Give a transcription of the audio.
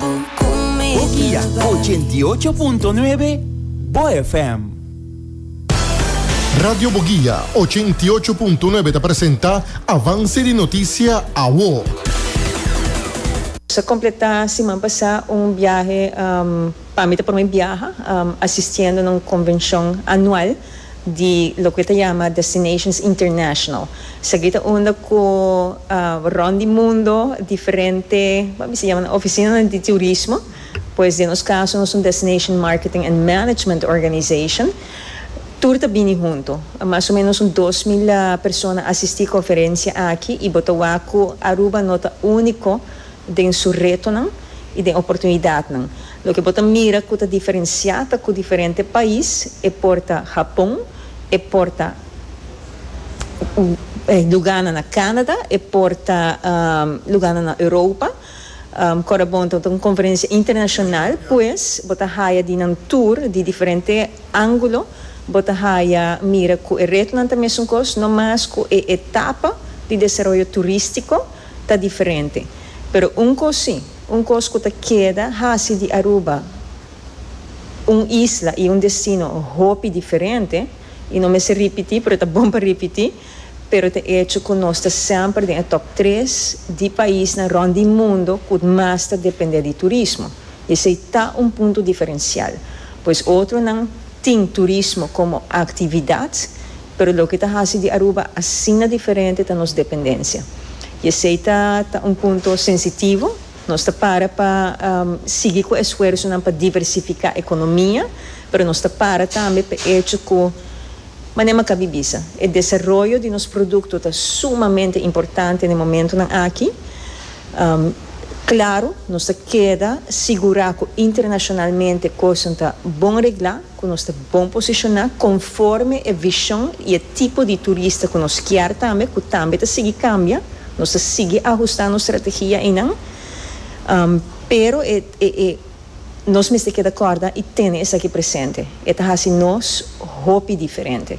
Bokia ochenta i ocho punto nuebe Bo FM. Radio Bogia ochenta i ocho punto nuebe ta presenta Avance di Noticia Awo. Nos a completá siman pasá un biahe pa mi ta prome biaha asistiendo na un convencion anual. di loke ta yama Destinations International. Esaki ta unda ku rònt di mundo diferente, bo a bisa yamanan ofisinanan di turismo, pues den nos kaso nos ta un Destination Marketing and Management Organization, tur ta bini huntu. Mas o menos un dos mil persona asistí konferensia aki i bo ta wak ku Aruba no ta úniko. den su retonan y den oportunidadnan. Loke bo ta mira cu ta diferencia ta cu diferente pais e porta Japon, e porta lugana na Canada, e porta lugana na Europa. Cora bon ta un conferencia internacional pues bo ta haya di nan tour di diferente angulo bo ta haya mira cu e retonan ta mesun cos no mas cu e etapa di desaroyo turistico. ta diferente. Pero un cos si, un cos cu ta keda haci di Aruba un isla y un destino hopi diferente, y no mester ripiti pero ta bon pa ripiti, pero ta echo cu nos ta semper den e top tres di paisnan rond di mundo cu mas ta depende di turismo. Y esey ta un punto diferencial. Pues otronan tin turismo como actividad Pero loke ta hasi di Aruba asina diferente ta nos dependencia. Y esey ta ta un punto sensitivo. Nos ta para pa sigui cu esfuersonan pa diversifica economia, pero nos ta para tambe p'e hecho cu, mane Maccabi bisa, e desaroyo di nos producto ta sumamente importante n'e momentonan aki. Claro, nos ta keda sigura cu internacionalmente cosanan ta bon regla. ku nos ta bon posishoná konforme e vishon i e tipo di turista ku nos kier tambe, ku tambe ta sigui kambia. Nos ta sigui ahustá nos strategia einan, pero e e nos mester keda kòrda i tene esaki presente, e ta hasi nos hopi diferente.